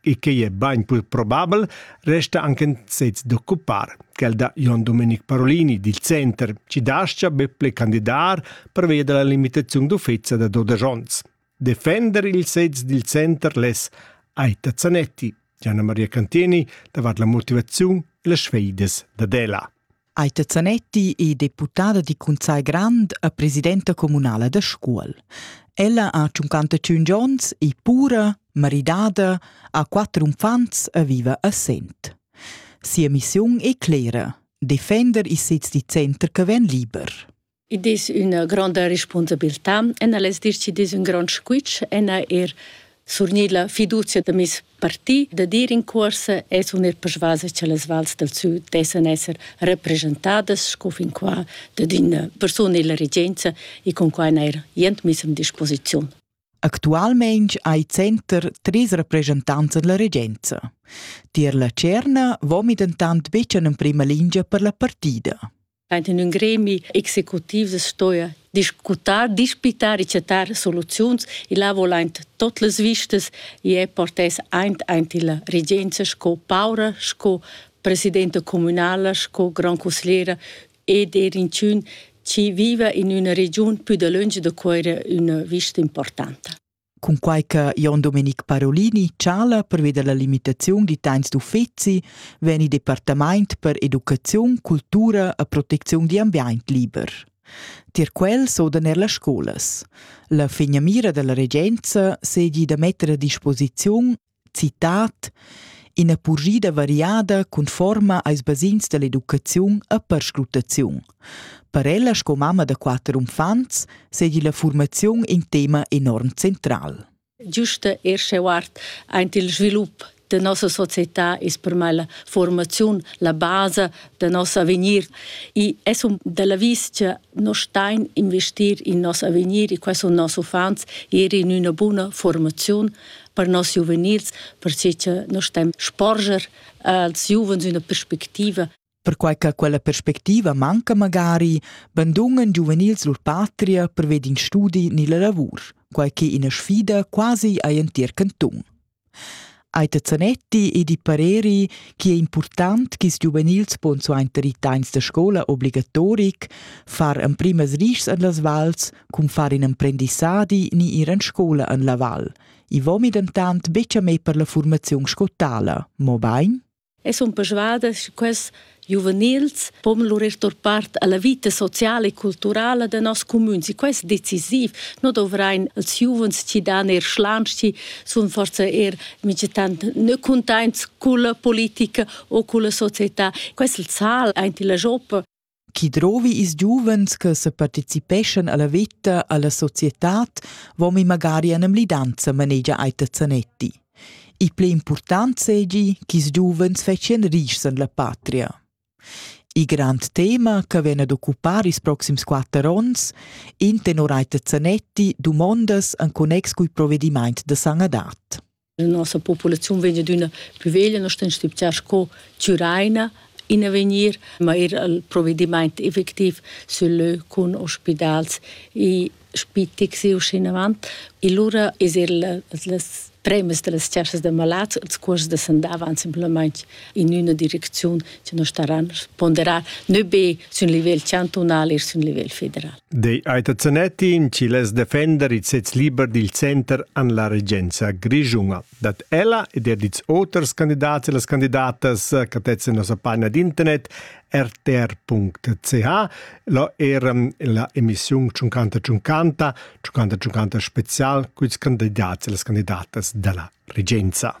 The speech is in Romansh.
e quei è bain pur probabel, resta anche in sez d'occupar. Quel da Jon Domenic Parolini dil Center ci dascia be ple candidar per via della limitazione d'uffizia da 12 onns. Defender il sez dil Center les Aita Zanetti, Gianna Maria Cantini davart la motivazione e le sfeides da Dela. Aita Zanetti è deputada di Cunsagl Grand e presidenta comunala da Scuol. Ella ha 55 onns, è pura, maridada, ha quatter unfants e vive a Sent. Sia missiun è clera, defender il sez di center che vien liber. Id es üna gronda respunsabiltà. Ena l'es dir chi'd es ün grond squitsch, ena eir surnir la fiduzia da meis parti da dir in cuorsa es un er persvasa cha las vals dal sü dessan esser representadas sco fin qua dad üna persuna illa regenza e cun quai n'eir jent miss in disposiziun. Actualmaing hai center trais represchentants da la regenza. Tier la tscherna vomi dentant betg en emprima lingia per la partida. in ün gremi executiv stoja discutar, dispitar e chatar soluziuns. Il ha volent tot las vistas e è portes aint aint illa regenza sco paura, sco presidenta comunala, sco gran consigliera ed er inchün chi viva in üna regiun pü dalönch da Cuera üna vista importanta. Cunquai che Jon Domenic Parolini chala pervia la limitaziun da temps d'uffizi vegn il departament per educaziun, cultura e protecziun da l'ambient liber. Tier quel sodan er las scolas. La finamira dalla regenza seigi da metter a disposiziun Citat ina purschida variada conforma als basegns dall'educaziun e perscrutaziun. Per ella sco mamma da quater uffants seigi la formaziun in tema enorm central. Giusta ir schewart aint il svilup de nossa società ist per me la formaziun la base de nos avegnir e es un della vis che no stein investir in nos avegnir e questo nos uffants ir in una buna formaziun per nos giuvenils, perche che noi stem sporger als giuvens üna perspectiva Perquai che quella perspectiva manca magari bandungen giuvenils lur patria per ved in studi ni la lavur, quai che ina sfida quasi a entir canton. Aita Zanetti e di pareri che è important che i giuvenils pon suenter i tains da scola obligatoric far emprimas rischs an las vals Cun far in emprendissadi ni ir en scola en la val. I vomi dentant betg a me per la formaziun scottala, mobain? E sun persuadas che quests giuvenils pon lur part alla vita sociala e culturala de nos communs. E questo è decisiv. Noi dovrain als giovens ci dan er schlanci, sun forse er migetant ne contents con la politica o con la società. Questo il sal, anche la joppa. Chi drovi ils giuvens che separticipeschan alla veta, alla societad, vomi magari an emlidanza manegia Aita Zanetti. Il pli important segi ch'is giuvens fetschian rischs en la patria. Il grand tema che vien ad occupar ils proxims quatter ons, in tenor Aita Zanetti dumondas en connex cul provedimaint da sanadat. la nossa populaziun vegn adüna plü veglia, nos temps stübgià sco Türaina in avegnir, ma er al provedimaint effectiv sül lö cun ospidals e spitix e uschinavant. E lura es er las premas da las chasas da malats, els cuors da sandava, simplamaing in üna direcziun che nos staran ponderar nö be sün livel chantunal e sün livel federal. Dei Aita Zanetti in Chiles defender il sez liber dil center an la regenza grischunga. Dat ella ed er dits oters candidats e las candidatas catetzen nossa pagina d'internet rtr.ch lo er la emissiun 50 50 50 50 spezial cuits candidats e las candidatas della regenza.